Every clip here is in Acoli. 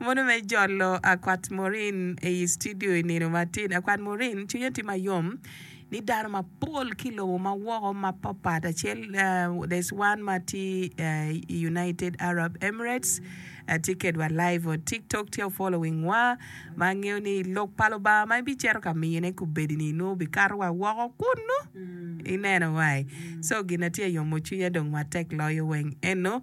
Mono me jolo akwat Maureen i i studio i nino matin. Akwat Maureen, cwinye tye ma yom ni dano mapol ki i lobo ma woko mapatpat acel eh, there's one ma tye eh, i United Arab Emirates eh, tye kedwa live on TikTok tye following wa ma angeyo ni lok pa Lubanga ma ibicito ka miyone kubedini nongo bikato wa woko kunu. Ineno wai. So gin na tye yomo cwinya dong matek loyo weng eno.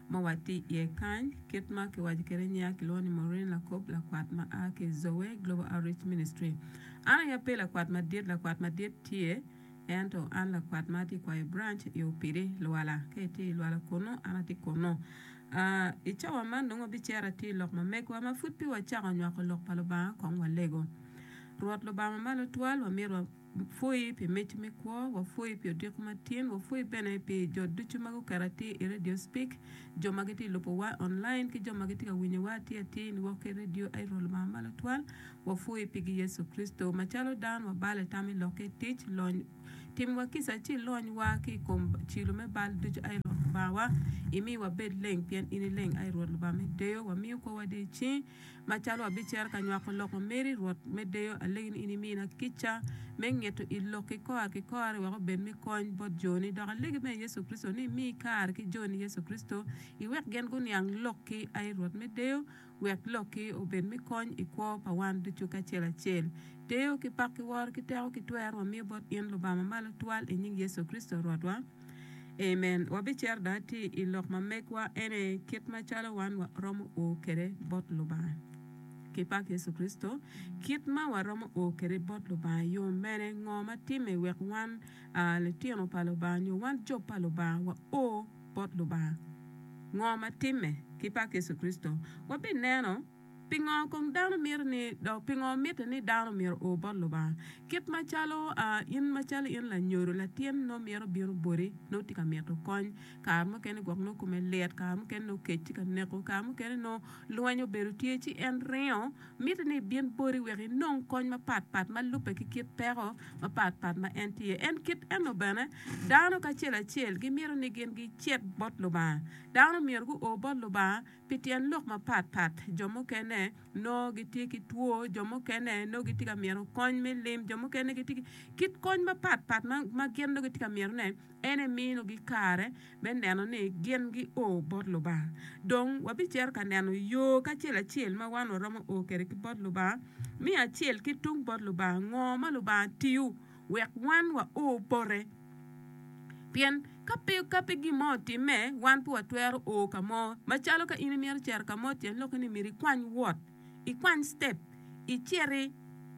ma watye iye kany. Kit ma kiwaco kwede i nyiya, kilwongo ni Maureen Lakob, lakwat ma a ki i Zoe Global Outreach Ministry. An aye ape lakwat madit, lakwat madit tye, ento an lakwat ma atye ka kwayo branch i Opidi, Luwala. Ka itye i Luwala kunnu, an atye kunnu. Aa, I cawa man dong wabicero atir lok ma megiwa ma pud pe wacako nywako Lok pa Lubanga kong walego. Rwot Lubanga ma Malo Twal, wamito wa. Wapwoyi pi mic me kwo, wapwoyi pi odiko matin, wapwoyi bene pi jo ducu ma guketo atir i Radio Speak, jo ma gitye lubowa online ki jo ma gitye ka winyowa atir atir ni woko ki radio. Aye Rwot Lubanga ma Lutwal, wapwoyi pigi Yecu Kricito. Macalo dano wabalo i tam i lokke tic, lony, timiwa kica ci ilony wa ki i kom cilo me bal ducu aye Rwot Lubangawa, imi wabed leng pien in ileng aye Rwot Lubanga me deyo, wamiyo kwowa dee i cingi. Macalo abicero ka nywako lok ma meri, Rwot me deyo, alegi ni in imina kica me ngeto i lokki kor ki kore wek obed me kony bot joni. Dok alegi bene i Yecu Kricito ni imi kare ki joni Yecu Kricito, iwek gin guniang lokki. Ai Rwot me deyo, wek lokki obed me kony i kwo pa wan ducu kacel acel. Deyo ki pak ki woro ki teko ki twer wamiyo bot in Lubanga Mamalo Twal i nying Yecu Kricito Rwotwa. Amen. Wabicero dong atir i lok ma megwa en aye kit macalo wan waromo o kwede bot Lubanga. Ki pak Yecu Kricito, kit ma waromo o kwede bot Lubanga yo mene? Ngo ma timme wek wan litino pa Lubanga nyo wan jo pa Lubanga wa o bot Lubanga? Ngo ma timme? Ki pak Yecu Kricito, wabineno. Pingo kong dano miti ni, dok pingo mitte ni dano myero o bot Lubanga? Kit macalo in macalo in lanyodo, latin nongo mito bino boti, nongo tye ka mito kony, kare mukene gwok nongo kome lit, kare mukene nongo kec tye ka neko, kare mukene nongo lweny obedo tye ci en ringo, mitte ni ebin boti wek inong kony mapat pat ma lubbe ki kit peko mapat pat ma en tye iye. En kit eno bene, dano kacel acel gimito ni gin gicit bot Lubanga. Dano myero guo bot Lubanga. Pi tyen lok mapat pat, jo mukene nongo gitye ki two, jo mukene nongo gitye ka myero kony me lim, jo mukene gitye ki kit kony mapat pat ma gin nongo gitye ka myerone. En eminogi kare me neno ni gin gio bot Lubanga. Dong wabicito ka neno yo kacel acel ma wan waromo o kwede ki bot Lubanga. Me acel, ki tung bot Lubanga, ngo ma Lubanga tiyo? wek wan wa o pote. Pien ka pe ka pe gin mo otimme, wan pe watwero o ka mo. Macalo ka in imito cito ka mo tyen lokke ni myero ikwany wot, ikwany step, iciti,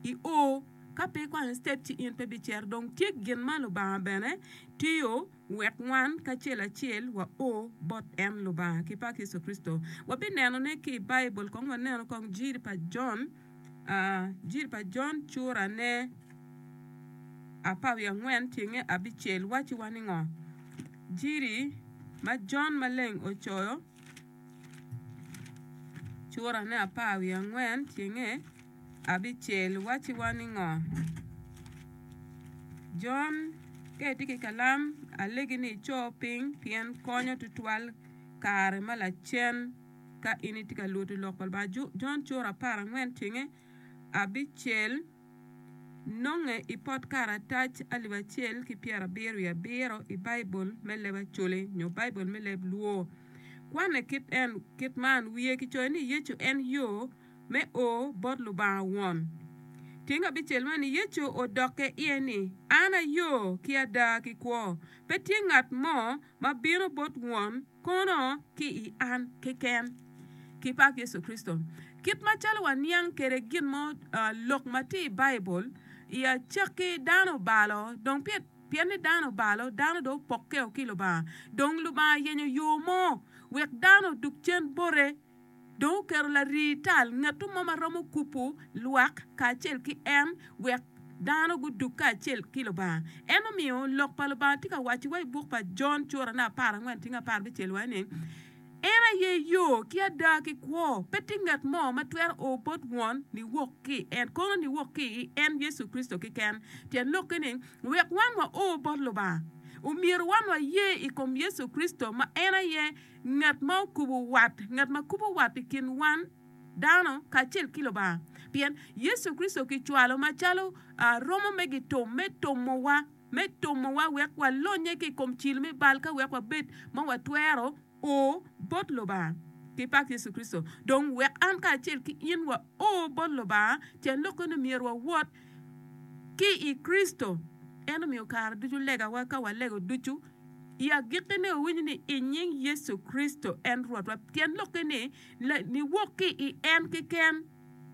i o. Ka pe ikwanyo step ci in pe bicito. Dong tye gin ma Lubanga bene tiyo wek wan kacel acel wa o bot en Lubanga ki pa Yecu Kricito. Wabinenone ki i Baibul kong wanenu kong jiri pa Jon. Injil pa Jon curane apar wiye angwen tyenge abicel wacciwa ni ngo? Injili ma Jon maleng ocoyo curane apar wiye angwen tyenge abicel wacciwa ni ngo? Jon ka itye ki kalam alegi ni ico piny pien konyo tutwal kare ma lacen. Ka in itye ka lwodo Lok pa Lubanga, Jon Cura apar angwen cenge abicel, nonge i pot karatac alip acel ki pyerabiro wiye abiro i Baibul me leb Acholi nyo Baibul me leb Luo. Kwane kit man, Wiye kicoyo ni Yecu en yo me o bot Lubanga Won. Tyeng abicel man, Yecu odokke iye ni, An ayo, ki ada, ki kwo. Pe tye ngat mo ma bino bot Won, Kono ki i an keken ki pak Yecu Kricito. Kit macalo waniang kwede gin mo, lok ma tye i Baibul, i acakki dano obalo, dong pien ni dano obalo, dano dong opokkeo ki Lubanga. Dong Lubanga oyenyo yo mo wek dano odug cen bote. Dong oketo larii tal, ngatu mo ma romo kupu lwak kacel ki en, wek dano gudug kacel ki Lubanga. En omiyo Lok pa Lubanga tye ka waco wa i buk pa Jon cura ne apar angwen tinge apar bicel wa ni, En aye yo, ki ada, ki kwo, pe tye ngat mo ma twero o bot Won niwok ki i en, kono niwok ki i en Yecu Kricito keken. Tyen lokke ni, wek wan wa o bot Lubanga, omyero wan wa ye i kom Yecu Kricito ma en aye Ngat ma okubo wat, ngat ma kubo wat i kin wan dano kacel ki Lubanga, pien Yecu Kricito kicwalo macalo romo me gitum me tomowa, me tomowa wek walonye ki i kom cil me bal ka wek wabed ma watwero o bot Lubanga. Ki pak Yecu Kricito! Dong wek an kacel ki in wa o bot Lubanga, tyen lok eno myero wawot ki i Kricito. En omiyo kare ducu legawa ka walego ducu I agikki ni wawinyo ni i nying Yecu Kricito en Rwotwa, tyen lokke ni niwok ki i en keken,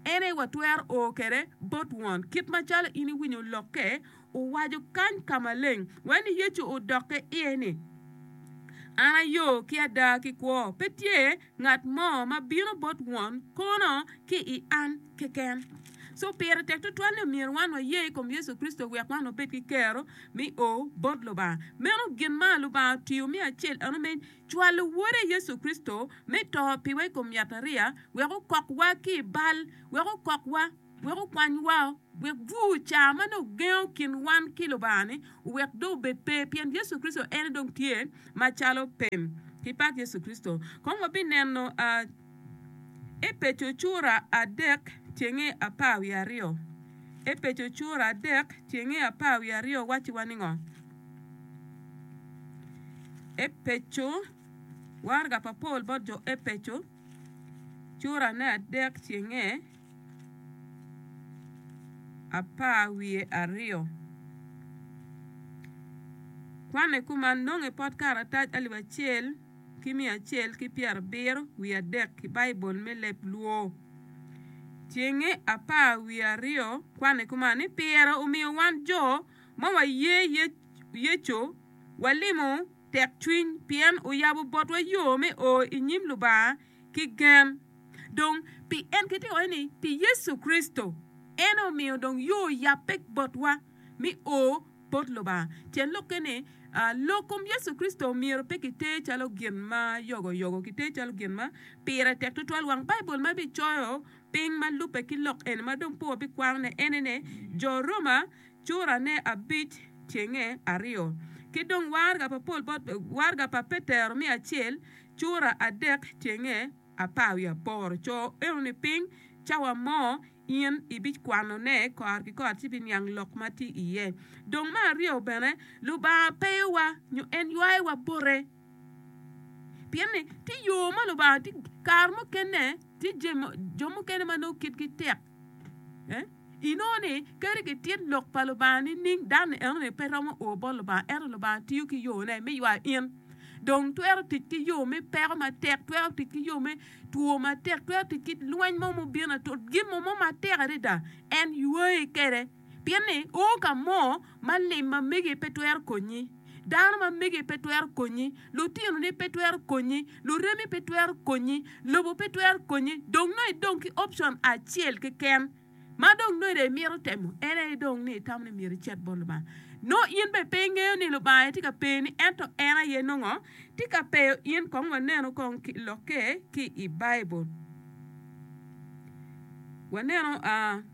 en aye watwero o kwede bot Won. Kit macalo in iwinyo lokke, owaco kany ka maleng wai ni Yecu odokke iye ni, An aye yo ki ada ki kwo, pe tye Ngat mo ma bino bot Won kono ki i an keken. Co pire tek tutwal ni myero wan waye i kom Yecu Kricito wek wan wabed ki kero me o bot Lubanga. Meno gin ma Lubanga otiyo me acel eno me cwalo Wode Yecu Kricito me to piwa i kom yatariya wek okokwa ki i bal, wek okokwa. wek okwanywa, wek bur ca ma nongo ogengo kin wan ki Lubanga-ni owek dong obed pe, pien Yecu Kricito en aye dong tye macalo pem. Ki pat Yecu Kricito! Kong wabineno Epeco cura adek cenge apar wiye aryo. Epeco cura adek cenge apar wiye aryo wacciwa ningo? Epeco, waraga pa Paul bot jo Epeco curane adek cenge. apar wiye aryo. Kwanne kuman, nongo i pot karatac alip acel ki miya acel ki pyerabiro wiye adek ki Baibul me leb lwo. Cenge apar wiye aryo, kwanne kuman ni Pire omiyo wan jo ma waye Yecu walimo tekcwiny pien oyabo botwa yo me o i nyim Lubanga ki gen. Dong, pi en kitye ka waco ni pi Yecu Kricito, en aye omiyo dong yo oyabbe botwa me o bot Lubanga. Tyen lokke ni, lok kom Yecu Kricito myero pe kiter calo gin ma yogoyogo, kiter calo gin ma pire tek tutwal. Wang Baibul ma ebicoyo piny ma lubbe ki lok eni ma dong pe wabikwanone en aye ni Jo Roma curane abic cenge aryo. Ki dong waraga pa Petero me acel. Cura adek cenge apar wiye aboro, Co enoni piny, cawa mo in ibikwanone kor ki kor ci ibiniang lok ma tye iye. Dong me aryo bene, Lubanga peyowa nyo en ywayowa bote. Pien ni tye yo ma Lubanga, kare mukene tye jo mukene ma nongo kitgi tek. Inongo ni, kadi gitit lok pa Lubanga nining, dan-ni enoni pe romo o bot Lubanga, ento Lubanga tiyo ki yone me ywayo in. Dong twero tic ki yo me peko matek, twero tic ki yo me two matek, twero tic ki lweny mo mubino, to gin mo mo matek adada en ywayi kede. Pien ni o ka mo ma lim ma megi pe twero konyi, dano ma megi pe twero konyi, lutinoni pe twero konyi, luremi pe twero konyi, lobo pe twero konyi, dong nongo idong ki option acel keken ma dong nongo ida imito temo, en aye dong ni itamo ni myero icit bot Lubanga. Nongo in bene pe ingeyo ni Lubanga aye tye ka peyoni ento en aye nongo tye ka peyo in. Kong wanenu kong ki lokke ki i Baibul, wanenu.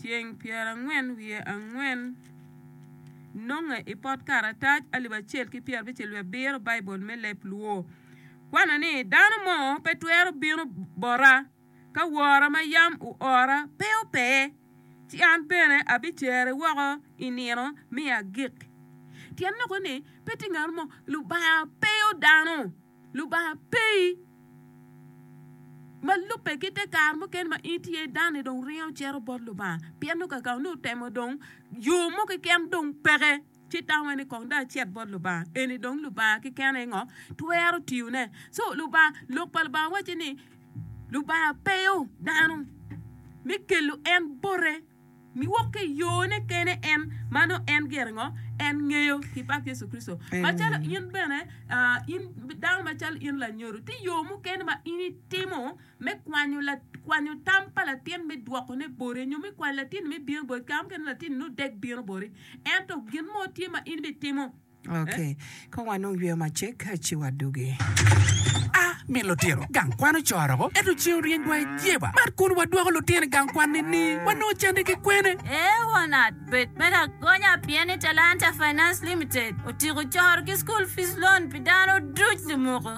Ceng pyerangwen wiye angwen nonge i pot karatac alip acel ki pyerabicel wiye abiro Baibul me Leb Luo. Kwanno ni dano mo pe twero bino bota ka wora ma yam oora pe opeye, ci an bene abicere woko i nino me agik. Tyen loko ni pe tye ngat mo, Lubanga peyo dano. Lubanga pe i. Ma lubbe ki te kare mukene ma in tye dano-ni dong ringo cito bot Lubanga pien nongo kaka onongo itemo dong yo mo keken dong peke ci tamo iye ni kong dong acit bot Lubanga. Eni dong Lubanga keken aye ngo twero tiyone. Co Lubanga Lok pa Lubanga wacci ni Lubanga peyo dano me kelo en bote. Niwok ki i yone kene en, ma nongo en gire ngo? En ngeyo ki pak Yecu Kricito. Macalo in bene, ah, in dano macalo in lanyodo, tye yo mukene ma in itimo me kwanyo la, kwanyo tam pa latin me dwokone boti, nyo me kwanyo latinni me bino boti, kare mukene latinni nongo dek bino boti, ento gin mo tye ma in bitimo. Ok, kong wanung yweyo macek ci wadugi. A. Min lutino gang kwan ocoro woko, ento cen oryeny wa i jeba. Mar kun wadwoko lutino i gang kwan nini? Wanongo cente ki kwene? A. Wangat bed me lagonya pien ni Talanta Finance Limited otiko coro ki school fees loan pi dano duc lumoko.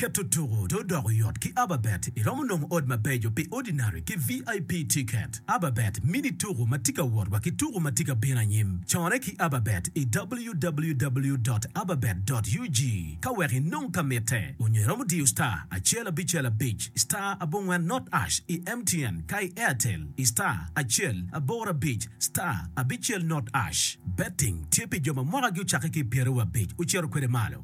Keto tuku dong odoko yot ki Ababet, iromo nongo od mabeco pi Ordinary ki VIP tiket. Ababet mini tuku ma tye ka wot wa ki tuku ma tye ka bino anyim. Corre ki Ababet i www dot ababet dot ug ka wek inong ka mitte, onyo iromo diyo star acel abicel abic star abongwen not ash i MTN ka i Airtel i star acel aboro abic star abicel not ash. Betting tye pi jo ma mwakagi ocakke ki i pyeraryo abic ocito kwede malo.